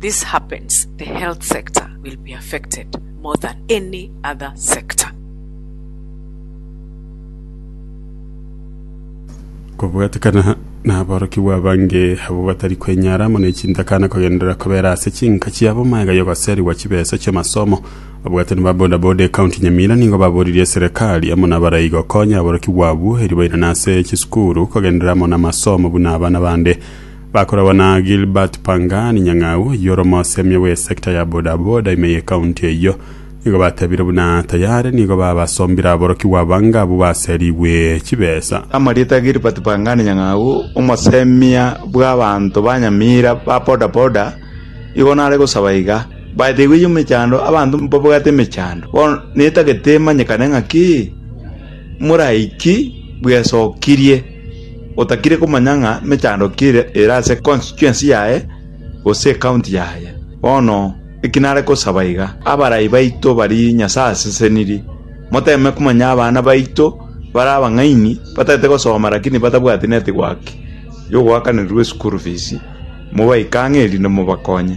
This happens the health sector will be affected more than any other sector. Kobwatekana naborokigwa abange abwo batari kwenyara amo nechintakana kogenderera kobera ase chinka chiabo maega yogoserigwa chibesa chiamasomo abwatani ba bodaboda ekaunti nyamira nigo baboririe eserekari amo nabarai gokonya aborokigwa abwo eri bairane ase chisukuru kogenderera amo namasomo buna abana bande Bakoragwa na Gilbert Pangani nyang'au oyio ore omosemi bwe sector ya boda boda ime ye county eyio. Nigo batebire buna tayare nigo babasombire aborokigwa abange abwo baserigwe chibesa. Amarieta Gilbert Pangani nyang'au omosemia bw'abanto ba Nyamira ba boda boda igo nare gosaba iga, Baetigwe eyio emechando abanto mbabwate emechando bono netagete emanyekane ng'aki moraiki bwesokirie. Otakire komanya ng'a mechando ki ere ase constituency yaye gose ecounty yaye. Bono eki nare gosaba iga, abarai baito baria Nyasae aseseniri, moteeme komanya abana baito bare abang'aini batagete gosoma lakini batabwati network yogoakanererwa eschool fees, mobaike ang'e erinde mobakonye.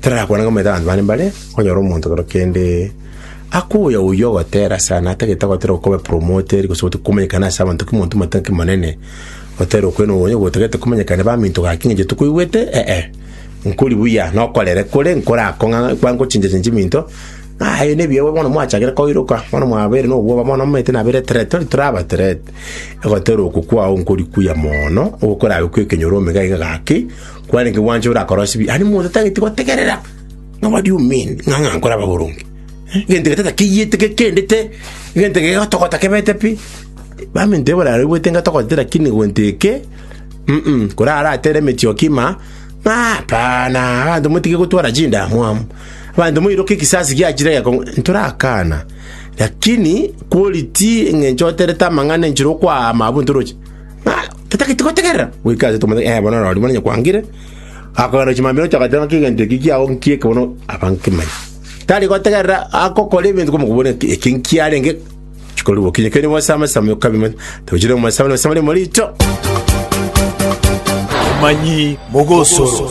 Tarakwana ng'a omanyete abanto bande mbare konyora omonto kero kende akoya oyio ogotera sana atagete gotera okobe promoted gose gote komanyekana ase abanto ki monto mate ki monene otera okwena oyo gotagete komanyekana baminto gaki ng'a geto koigwete eh nkori buya nokorere kore nkorakong'a kwa ngochincha chinchi minto ng'a aye nebiya igo bono mwachakire koiroka bono mwabere na obwoba bono omanyete nabere threat tori toraba threat egotera oko kwao nkori kuya mono ogokorabe kwekenyoro omega iga gaki Kwarenge gwancha ore akorosibia, aria monto tageti gotegerera ng'a what do you mean? Ng'a ng'a nkore ababoronge? Eh, gento gete takeiyete gekendete, gento gegatogota kebete pi. Baminto ebora aroibwete ngatogotete lakini gwento eke, mm kora aratere emechie okima, ng'a hapana, abanto motige gotwara chindamwamu. Abanto moiroke ekisasi giachire gekong'u, ntorakana. Lakini quality eng'encho oterete amang'ana enchera okoama abwo ntoroche. Totagete gotegerera goika aase tomanye ee bono orori monye kwangire. Akogenda gochia mambia nocha agateba ng'aki egento eki kiao nkieke bono aba nkimanye. Tari gotegerera agokora ebinto komokobwira ng'a eki nkiarenge chikorigwa okinye keri bosame same okabimanya. Tochire omosame na osame rimo richo. Abamanyi b'ogosoro.